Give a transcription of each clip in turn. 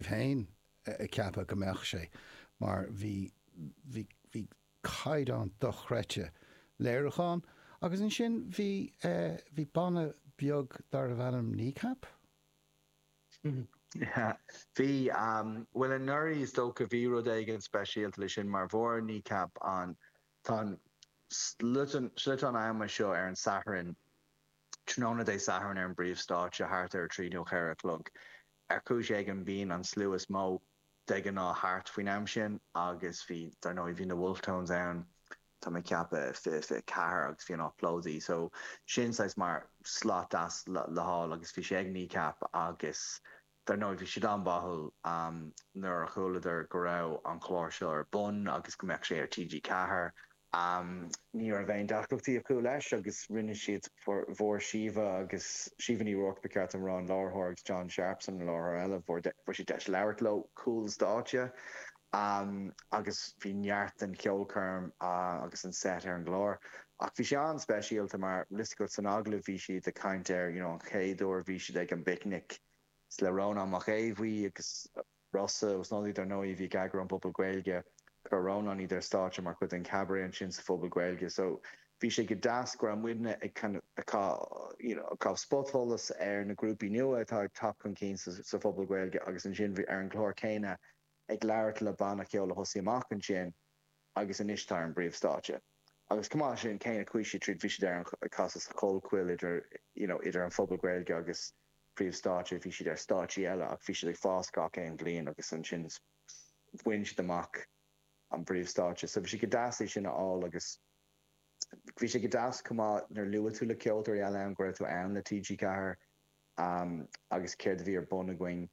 féin ag ceapadh go mbeadh sé, mar bhí, bhí, bhí caighdeán dochreidte léiriúcháin agus ansin bhí, bhí banna beag darbh ainm Kneecap? Bhí, bhuel anuraidh is dócha bhí rud éigin speisialta leis sin mar fuair Kneecap an, tá an, sliotán ama seo ar an Satharn, Tráthnóna Dé Sathairn ar an bpríomhstáitse, thart ar a trí nó cheithre a chlog. Ar chúis éigin, bíonn an slua is mó de ghnáth thart faoin am sin agus bhí, dar ndóigh, bhí na Wolfe Tones ann, tá mé ag ceapadh, fiche, fiche ceathair agus bhí an áit plódaithe. So, sin saghas mar slot deas le fáil agus bhí sé ag Kneecap agus, dar ndóigh, bhí siad an-bháúil nuair a chualadar go raibh an clár seo ar bun agus go mbeadh sé ar TG4. Ámh, ní raibh aon deacrachtaí acu leis agus rinne siad fuair Síomha agus Síomha Ní Ruairc, ba cheart dom a rá, an láithreoir, agus John Sharpson, an láithreoir eile, fuair siad deis labhairt leo cúl stáitse. Ámh, agus bhí neart den cheolchoirm agus an seit ar an gclár. Ach bhí sé an-speisialta mar, le linn an agallaimh, bhí siad ag caint ar, you know, an chéad uair a bhí siad ag an bPicnic le Rónán Mac Aodh Bhuí agus, Rossa agus Snodaigh, dar ndóigh, a bhí ag eagrú an Phubaill Gaeilge. Chuir Rónán iad ar stáitse mar chuid den Chabaret ansin sa Phuball Gaeilge. So, bhí sé go deas go raibh muidne ag kind of ag cai, you know, ag caitheamh spotsholas ar na grúpaí nua atá ag teacht chun cinn sa sa Phuball Gaeilge agus ansin ar an gclár céanna ag labhairt le banna ceoil a thosaigh amach ansin. agus anois atá ar an bpríomhstáitse agus chomh maith leis sin céimeanna cuí tríd bhí siad ag casadh sa Chollchoill idir you know idir an Puball Gaeilge agus príomhstáitse bhí siad ar stáitsí eile ach bhí siad ag fás gach aon bhliain agus ansin bhain siad amach an príomhstáitse so bhí sé go deas é sin a fháil agus bhí sé go deas chomh maith nuair luaigh tú le ceoltóirí eile ann go raibh tú ann le TG4 um, agus céard a bhí ar bun againn.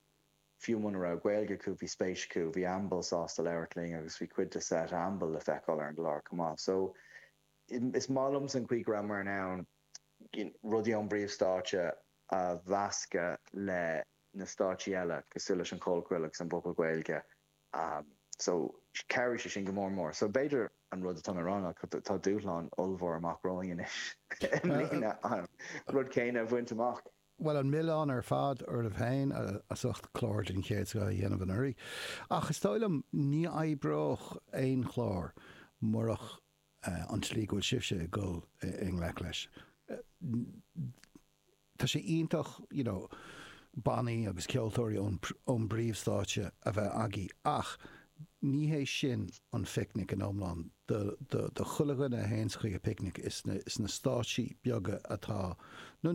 Fiú muna raibh Gaeilge acu, bhí spéis acu, bhí Amble sásta labhairt linn agus bhí cuid de seit Amble le feiceáil ar an gclár chomh maith. So, is maith liomsa an chaoi go rabhamar in ann rudaí ón bpríomhstáitse a mheascadh le na stáitsí eile cosúil leis an Chollchoill agus an Puball Gaeilge. So, chabhraigh sé sin go mór mór. So, b'fhéidir an rud atá mé a rá ná tá dúshlán ollmhór amach romhainn anois i mbliana an rud céanna a bhaint amach. Bhuel, an milleán ar fad oraibh féin as ucht clár den chéad scoth a dhéanamh anuraidh, ach is dóigh liom ní oibreodh aon chlár murach an tslí go bhfuil sibhse ag dul i ngleic leis. Tá sé iontach, you know, bannaí agus ceoltóirí ón bpríomhstáitse a bheith agaibh ach Ní hé sin an phicnic in iomlán. Do chuile dhuine a théanns chuig an bpicnic, is na stáitsí beaga atá, nó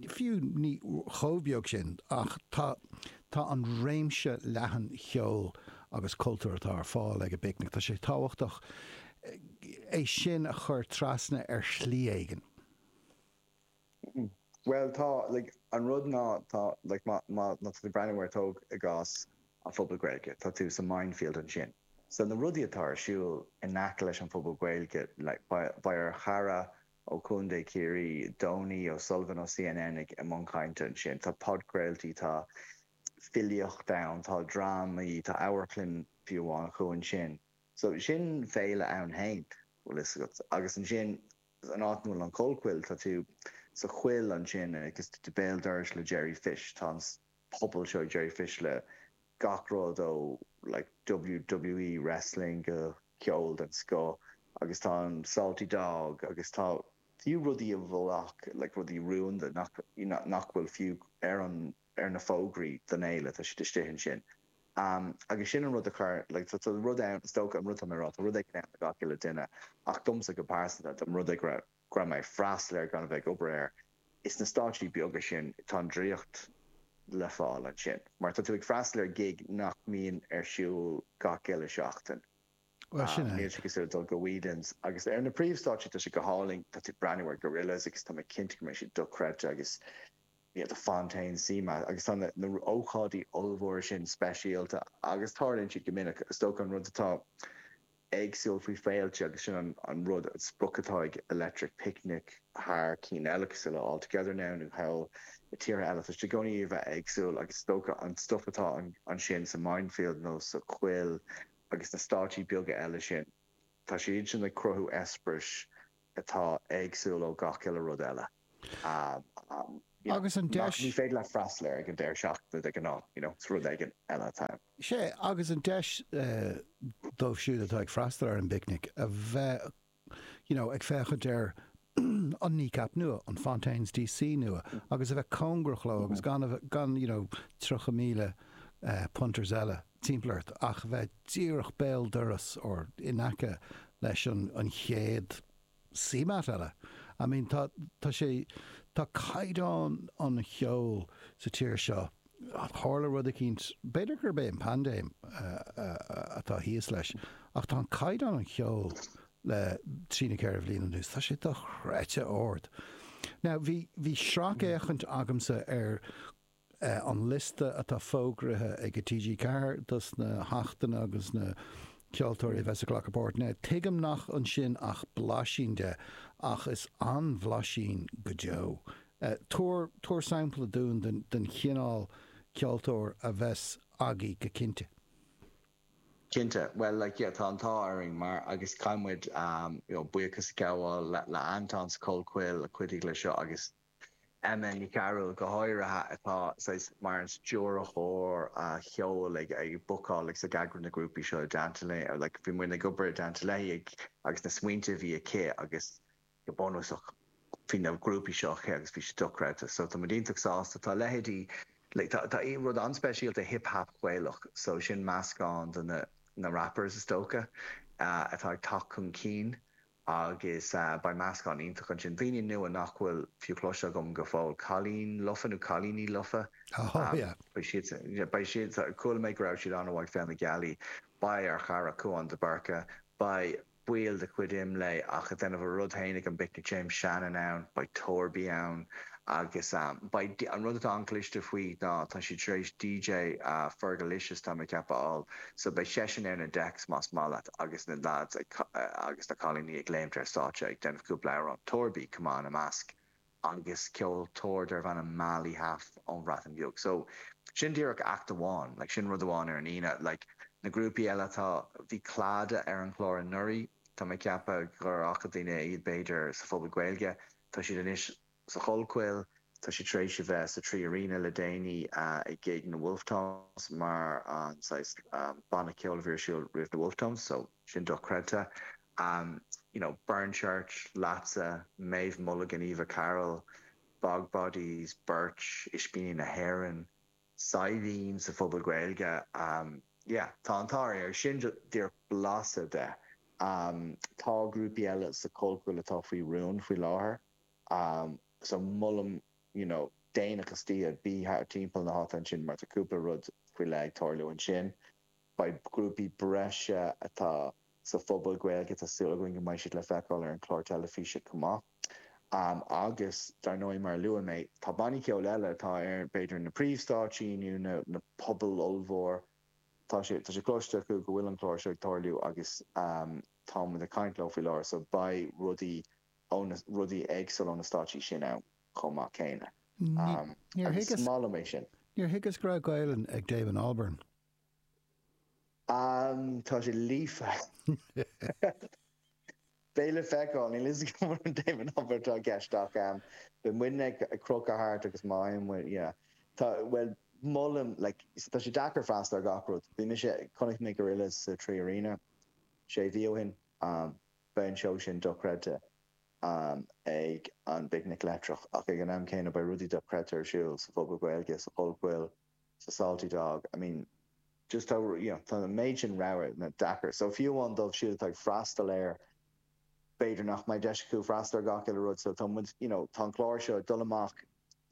fiú ní chomh beag sin, ach tá an réimse leathan cheoil agus cultúir atá ar fáil ag an bpicnic, tá sé tábhachtach é sin a chur trasna ar shlí éigin. Bhuel, tá, like, an rud ná, tá, like, má, má, má tá tú ag breathnú ar, tóg i gcás an Phuball Gaeilge, tá tú sa Mindfield ansin. So na rudaí atá ar siúl in aice leis an Phuball Gaeilge, like, beidh, beidh ár chara ó Chontae Chiarraí, Donie O'Sullivan ó CNN ag, i mbun cainte ansin, tá podchraoltaí, tá filíocht ann, tá drámaí, tá amharclann fiú amháin acu ansin. So sin féile ann féin, bhfuil fhios agat. Agus ansin. an áit 'na bhfuil an Chollchoill, tá tú sa choill ansin agus tú béal dorais le Jerry Fish, tá an puball seo ag Jerry Fish le gach rud ó like WWE wrestling go ceol den scoth agus tá an Salty Dog agus tá fiú rudaí a bheadh like rudaí rúnda nach, you know, nach bhfuil fiú ar an. ar na fógraí don fhéile, tá siad istigh ansin. Agus sin an rud a chuir, like, tá rud ann, is dócha, an rud atá mé a' rá, tá rud éigin ann do gach uile duine ach domsa go pearsanta, dá mba rud é go raibh mé ag freastal air gan a bheith ag obair air, is na stáitsí beaga sin, tá an draíocht le fáil ansin mar tá tú ag freastal ar ghig nach mbíonn ar siúl gach uile seachtain. Bhuel, sin é. Níl sé cosúil le dul go Whelan's agus ar na príomhstáitsí tá sé go hálainn, tá tú ag breathnú ar Gorillaz agus tá mé cinnte go mbeidh siad dochreidte agus, you know, Fontaines, CMAT agus tá na hócáidí ollmhóra sin speisialta agus tarlaíonn siad go minic. Is dócha an rud atá éagsúil faoi féilte agus sin an rud, an sprioc atá ag Electric Picnic thar cinn eile cosúil le All Together Now nó thall i dtíortha eile, tá siad i gcónaí a bheith éagsúil agus is dócha an stuif atá ansin sa Mindfield nó sa Choill agus na stáitsí beaga eile sin, tá siad sin ag cruthú eispéiris atá éagsúil ó gach uile rud eile you know agus an deis. Ní féidir leat freastal air ag an deireadh seachtaine de ghnáth you know is rud éigin eile atá ann. Sea, agus an deis dóibh siúd atá ag freastal ar an bPicnic a bheith you know ag féachaint ar an Kneecap nua, an Fontaines D.C. nua agus a bheith cóngarach leo agus gan you know 30,000 punters eile timpeall ort ach bheith díreach béal doras or in aice leis an chéad CMAT eile. I mean tá tá sé tá caighdeán an cheoil sa tír seo tharla rud eicínt b'fhéidir gurb é an paindéim atá thíos leis ach tá an caighdeán an cheoil le trí nó ceithre bhliain anuas tá sé dochreidte ard. Now bhí bhí sracfhéachaint agamsa ar an liosta atá fógraithe ag TG4 dos na hachtanna agus na ceoltóirí a bheas ag glacadh páirt ann. Tuigim nach ansin ach blaisín de, ach is an-bhlaisín go deo. Tabhair, tabhair sampla dúinn den, den chineál ceoltóir a bheas agaibh go cinnte. Cinnte, bhuel, like, yeah, tá an t-ádh orainn mar, agus caithfidh muid, you know, buíochas a ghabháil le Anton sa Chollchoill a chuidigh le seo agus, you Emma Ní Chearúil go háirithe, atá saghas mar an stiúrthóir cheoil ag bookáil agus ag eagrú na grúpaí seo i dteannta léi, or like bhí muid ag obair i dteannta léi ag agus na smaointe a bhí aici agus go bunúsach bhí na grúpaí seo aici agus bhí siad dochreidte so tá muid iontach sásta. Tá leithéidí like tá tá rud an-speisialta hip hop Gaelach so sin meascán de na na rappers is dócha atá ag teacht chun cinn Agus beidh meascán iontach ansin, daoine nua nach bhfuil fiú cloiste agam go fóill, cailín lofa nó cailíní lofa, beidh siad, beidh siad, chuala mé go raibh siad an-mhaith ag Féile na Gealaí, beidh ár chara Cúán de Búrca, beidh baill de chuid Imlé ach a' déanamh a rud féin ag an bPicnic, James Shannon ann, beidh Torby ann agus beidh, an rud atá an-chliste faoi ná tá siad tar éis DJ Fergalicious, tá mé ag ceapadh, a fháil so beidh seisean ar na decks más maith leat. agus na leaids agus na cailíní ag léimt ar stáitse ag déanamh cúpla amhrán, Torby, chomh maith ina measc, agus ceoltóir darb ainm Mali Haf ón Bhreatain Bheag. So, sin díreach act amháin, like sin rud amháin ar an Aoine. Like, na grúpaí eile atá, bhí Clada ar an chlár anuraidh, tá mé ag ceapadh gur fhaca daoine iad b'fhéidir sa Phuball Gaeilge, tá siad anois sa Chollchoill, tá sé tar éis a bheith sa 3Arena le déanaí ag Gig na Wolfe Tones mar an saghas banna ceoil a bhí ar siúl roimh na Wolfe Tones so sin dochreidte. you know, Burnchurch, Leatsa, Méabh Mulligan, Eva Carroll, Bog Bodies, Birch, Ispíní na hÉireann, Saidhbhín sa Phuball Gaeilge, yeah, tá an t-ádh orainn, sin díreach blaiseadh de. Tá grúpaí eile sa Chollchoill atá faoi rún faoi láthair. so molaim you know déanach istoíche, bí thart timpeall na háite ansin mar tá cúpla rud faoi leith ag tarlú ansin. Beidh grúpaí breise atá sa Phuball Gaeilge, tá súil againn go mbeidh siad le feiceáil ar an chlár teilifíse chomh maith. Agus dar ndóigh mar a luaigh mé, tá bannaí ceoil eile atá ar b'fhéidir na príomhstáitsí nó na na pubaill ollmhór, tá sé tá sé cloiste acu go bhfuil an clár seo ag tarlú agus tá muid ag caint leo faoi láthair so beidh rudaí ó na rudaí éagsúla ó na stáitsí sin ann chomh maith céanna. agus is maith liom é sin. Níor thuigeas go raibh Gaelainn ag Damon Albarn. Tá sé líofa. Beidh le feiceáil. Níl 'fhios agam murab é Damon Albarn atá i gceist ach beidh muidne ag crochadh thart agus má fhaigheann muid, yeah. Tá, bhuel, molaim, like, tá sé deacair freastal ar gach rud. Bhí mise, chonaic mé Gorillaz sa 3Arena sé mhí ó shin. Beidh an seó sin dochreidte ag an bPicnic Leictreach ach ag an am céanna beidh rudaí dochreidte ar siúl sa Phuball Gaeilge, sa Chollchoill, sa Salty Dog, I mean just tá, you know, tá an méid sin rogha ann, tá sé deacair. So fiú amháin dóibh siúd atá ag freastal air b'fhéidir nach mbeidh deis acu freastal ar gach uile rud so tá muid, you know, tá an clár seo ag dul amach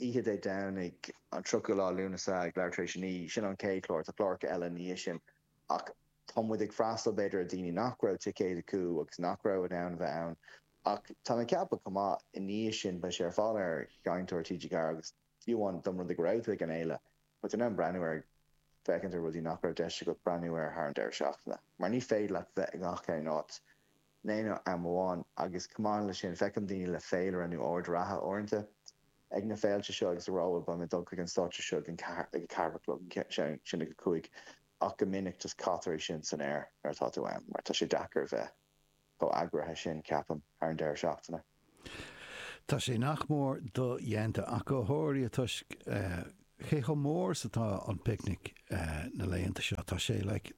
oíche Dé Domhnaigh an 30ú lá Lúnasa ag leathuair tar éis a naoi, sin an chéad chlár, tá cláracha eile i ndiaidh sin. ach tá muid ag freastal, b'fhéidir, ar dhaoine nach raibh ticéid acu agus nach raibh in ann a bheith ann. Ach tá mé ag ceapadh chomh maith, i ndiaidh sin, beidh sé ar fáil ar Sheinnteoir TG4 agus fiú amháin más rud é go raibh tú ag an fhéile, beidh tú in ann breathnú air, féachaint ar rudaí nach raibh deis agat breathnú air thar an deireadh seachtaine, mar ní féidir leat bheith i ngach aon áit. in aon am amháin, agus chomh maith leis sin, feicim daoine le féilire nó ord reatha uaireanta ag na féilte seo, agus ag rá ba mhaith liom dul chuig an stáitse seo ag an ceathair, ag a ceathair a chlog, ansin ag a cúig, ach go minic just caitear é sin san aer nuair atá tú ann, mar tá sé deacair a bheith chomh eagraithe sin, ceapaim, thar an deireadh seachtaine. Tá sé nach mór dodhéanta ach go háirithe toisc cé chomh mór is atá an Picnic na laethanta seo. Tá sé, like,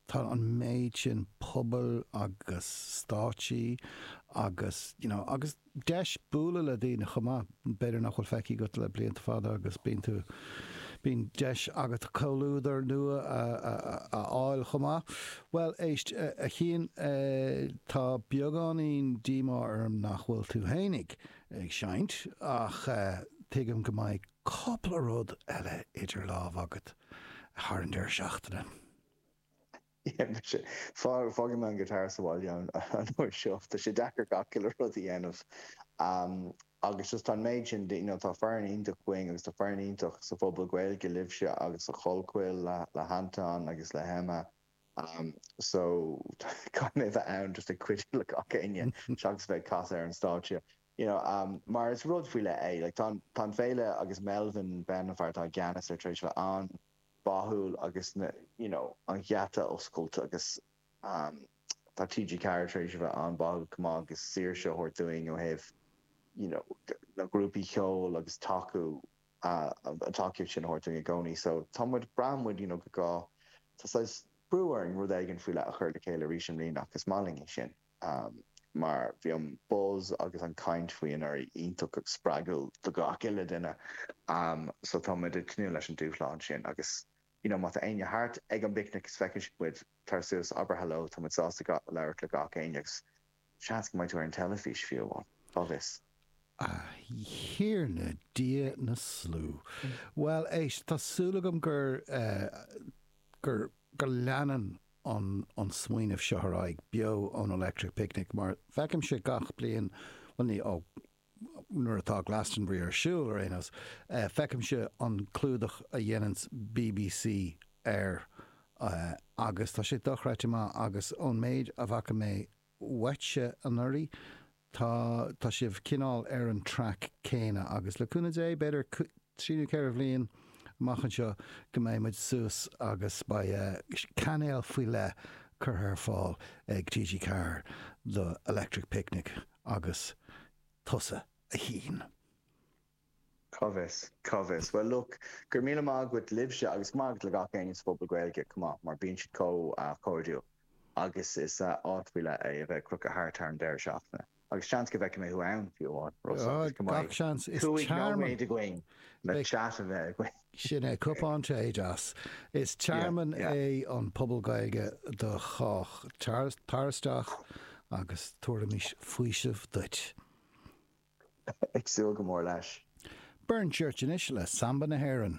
tá an méid sin puball agus stáitsí agus, you know, agus deis bualadh le daoine chomh maith. B'fhéidir nach bhfuil feicthe agat le blianta fada agus bíonn tú, bíonn deis agat comhluadar nua a fháil chomh maith. Bhuel, éist, a Chiain, tá beagáinín díomá orm nach bhfuil tú fhéinig ag seinnt ach tuigim go mbeidh cúpla rud eile idir lámha agat thar an deireadh seachtaine. Fágfaidh mé an guitar sa bhaile an uair seo. Tá sé deacair gach uile rud a dhéanamh agus just tá an méid sin de, you know, tá foireann iontach againn agus tá foireann iontach sa Phuball Gaeilge, libhse agus sa Chollchoill le hAnton agus le hEmma so caithfidh mé bheith ann just ag cuidiú le gach éinne seachas bheith ag casadh ar an stáitse, you know, mar is rud faoi leith é. Like tá an, tá an fhéile agus Melvin Benn an fear atá i gceannas air tar éis bheith ann. báúil agus na you know an gheata oscailte agus ehm tá TG Ceathair tar éis a bheith an-bháúil chomh maith agus saoirse a thabhairt dúinn ó thaobh you know na grúpaí ceoil agus tacú ah an tacaíocht sin a thabhairt dúinn i gcónaí so tá muid braitheann muid you know go gá tá saghas brú orainn rud éigin faoi leith a chur le chéile arís i mbliana ach is maith linn é sin. amh, mar bhí an buzz agus an chaint faoi anuraidh iontach spreagúil do gach uile duine, amh, so tá muid ag tnúth leis an dúshlán sin agus you know má tá éinne thart ag an bPicnic is feicfidh muid, tar suas, abair hello, tá muid sásta labhairt le gach éinne agus seans go mbeidh tú ar an teilifís fiú amháin, cá bhfios. A Thiarna Dia na slú! Bhuel, éist, tá súil agam gur eh, gur, gur leanann an smaoineamh seo ar aghaidh beo ón Electric Picnic mar feicimse gach bliain, bhuel ní, ó, nuair atá Glastonbury ar siúl ar aon nós, feicimse an clúdach a dhéananns bbc air agus tá sé dochreidte maith agus ón méid a bhfaca mé uaitse anuraidh. Tá, tá sibh cineál ar an track céanna agus le cúnamh Dé, b'fhéidir trí nó ceithre bhliain amach anseo go mbeidh muid suas agus beidh cainéal faoi leith curtha ar fáil ag TG Ceathair do Electric Picnic agus tusa a Shiún. Cá bhfios? Cá bhfios? Bhuel, look, go raibh míle maith agat libhse agus go maith agat le gach éinne sa Phuball Gaeilge chomh maith mar bíonn siad chomh cairdiúil agus is áit faoi leith é a bheith ag crochadh thart thar an deireadh seachtaine agus seans go bhfeicfidh mé thú ann fiú amháin, Rossa, agus go mbeidh cúig nóiméad againn le chat a bheith againn. Sin é, cupán tae deas. Is tearmann é an Puball Gaeilge do chách. Tar isteach agus tabharfaimid faoiseamh duit. Ag súil go mór leis. Burn Church anois le Samba na hÉireann.